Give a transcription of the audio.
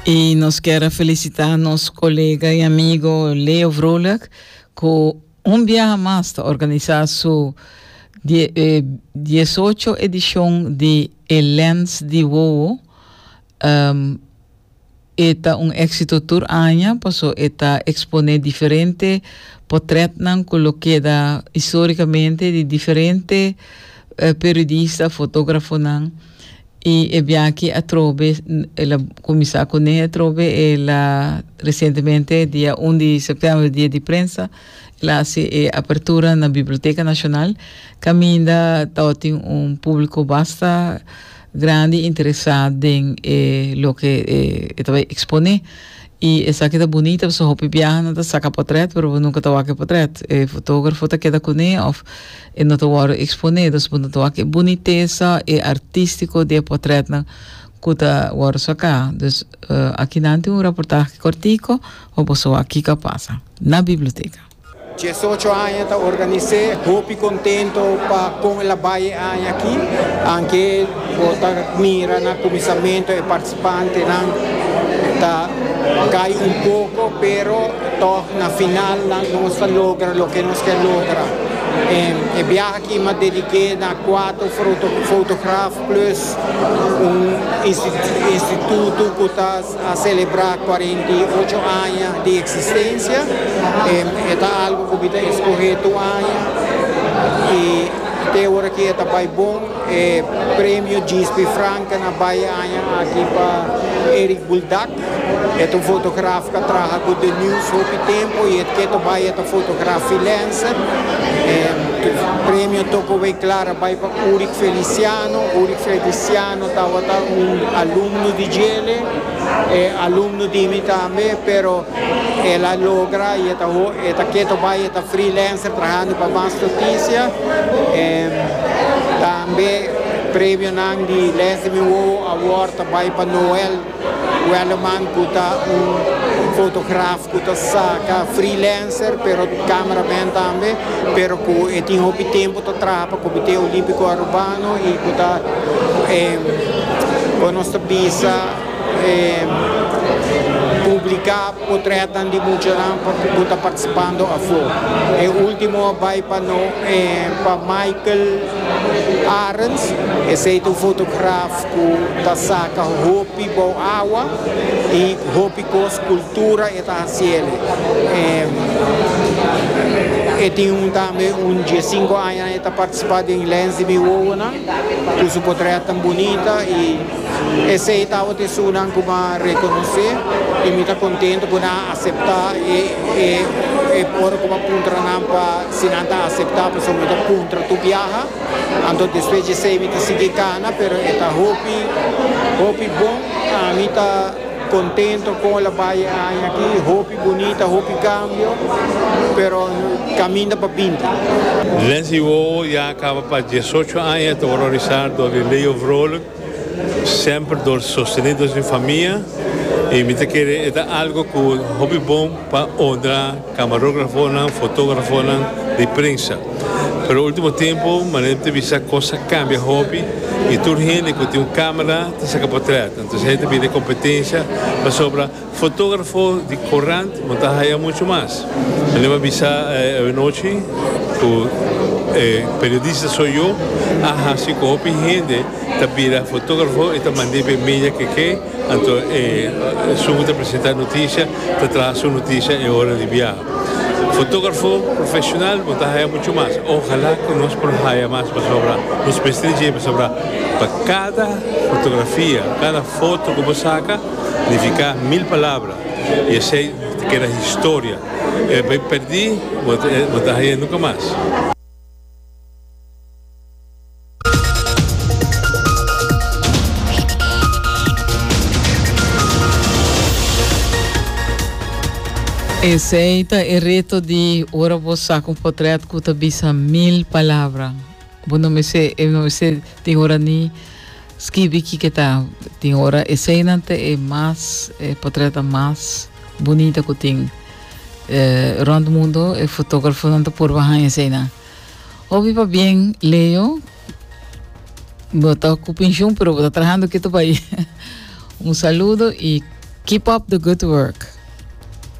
I nos kier a felisitá nos kolega i amigo Leo Vrolijk ku un biaha mas ta organisá su die, eh, 18 edishon di E Lens di Wowo. Um, e ta un éksito tur aña paso e ta eksponé diferente potrètnan ku lo keda histórikamente di diferente eh, periodista, fotógrafonan. Y e biachi atrobe, el a cuminsa cu nehe atrobe, el a recientemente dia un di septiember, dia di prensa, el a haci e apertura na Biblioteca Nacional, caminda tabatin un publico basta grandi y interesa den e loke e ta bay expone. Y esaki ta bunita pasobra hopi biahanan ta saca potret pero bo nunca ta wak e potret, e fotografo ta keda cune of E no ta wòrdu eksponé, dus bo no ta wak e bunitesa, e artístiko di e potrètnan ku ta wòrdu saká. Dus, akinan tin un raportahe kòrtiko pa boso wak kiko a pasa na biblioteka. Diesocho aña ta organis'é, hopi kontento pa kon el a bai e aña aki, anke bo ta mira na kuminsamentu e. Pantenan ta cay un poco pero tog na final nan nos ta logra loke nos kier logra. E biaha aki m'a dedique na cuatro fotograf plus un instituto cu ta a celebra cuarenta y ocho aña di existencia. E ta algo cu mi ta escoge tur aña y te ora aki e ta bay bon. E Premio Gispi Franca na bai e aña aki pa Eric Buldak. E ta un fotograf cu a traha cu The News hopi tempo y e keto bai e ta fotograf freelancer. E premio toko wey klar a bai pa Uric Feliciano. Uric Feliciano tawata un alumno di djele. E alumno di mi tambe pero el a logra y e ta e ta keto bay e ta freelancer trahando pa mas noticia tambe premionan di les di mi wowo award ta bay pa Noel Welleman cu ta un fotograf cu ta saca freelancer pero cameraman tambe pero cu e tin hopi tempo ta traha pa comite olimpico Aruba. Anu i ku ta ora nos ta bisa publiká potrètnan di muchanan ku ta partisipando afó. E último a bai pa no pa Michael Arends, esei ta un fotograf ku ta saka hopi bou awa i hopi kos kultura e ta hasiel. E tin tambe un diesinko aña. Nan e ta participa den lens di mi wowonan cu su potret tan bunita y esey ta awor ta esunnan cu m'ha reconoce y mi ta contento cu nan a acepta e ora cu m'a puntra nan pa si nan ta acepta pasobra mi ta puntra tur biaha anto despues di esey mi ta sigui cana pero e ta hopi hopi bon a mi ta Contento con el a bay e aña aki, hopi bunita, hopi cambio, pero caminda pa binti. Lindsay Wowo ya a caba pa diesocho aña ta horrorisá dor di Leo Vrolijk, semper dor sostené dor sin famia, i mi ta kere e ta algo cu hopi bon pa honra. Camarografonan, fotografonan, di prensa. Pero ultimo tempo manera mi ta bisa cos a cambia hopi y tur hende cu tin un camera ta saca potret. Anto esey ta bira e competencia pasobra fotografo di corant no ta haya mucho mas. Manera mi a bisa awanochi cu e periodista soy yo a haci cu hopi hende ta bira fotografo y ta mand'e pa e media keke. Anto e esun ku ta presentá noticia ta traha su noticia e ora di biaha. Fotógrafo profesional bo ta haya muchu mas. Ojalá ku nos por haya mas pasobra nos mester di djé pasobra pa kada fotografia, kada foto ku bo saka nifiká mil palabra i esei ta keda historia. E bai pèrdí bo ta haya nunka mas. Esei ta e reto di ora bo saca un potret cu ta bisa mil palabra. Bo no mester, e no mester tin ora ni skibi kike ta. Tin ora eseinan ta e mas, e potretnan mas bunita cu tin. Eh, rond mundo e fotografonan ta por baha eseinan. Hopi pabien Leo bo ta cu pensioen pero bo ta trahando kito bay un saludo y keep up the good work.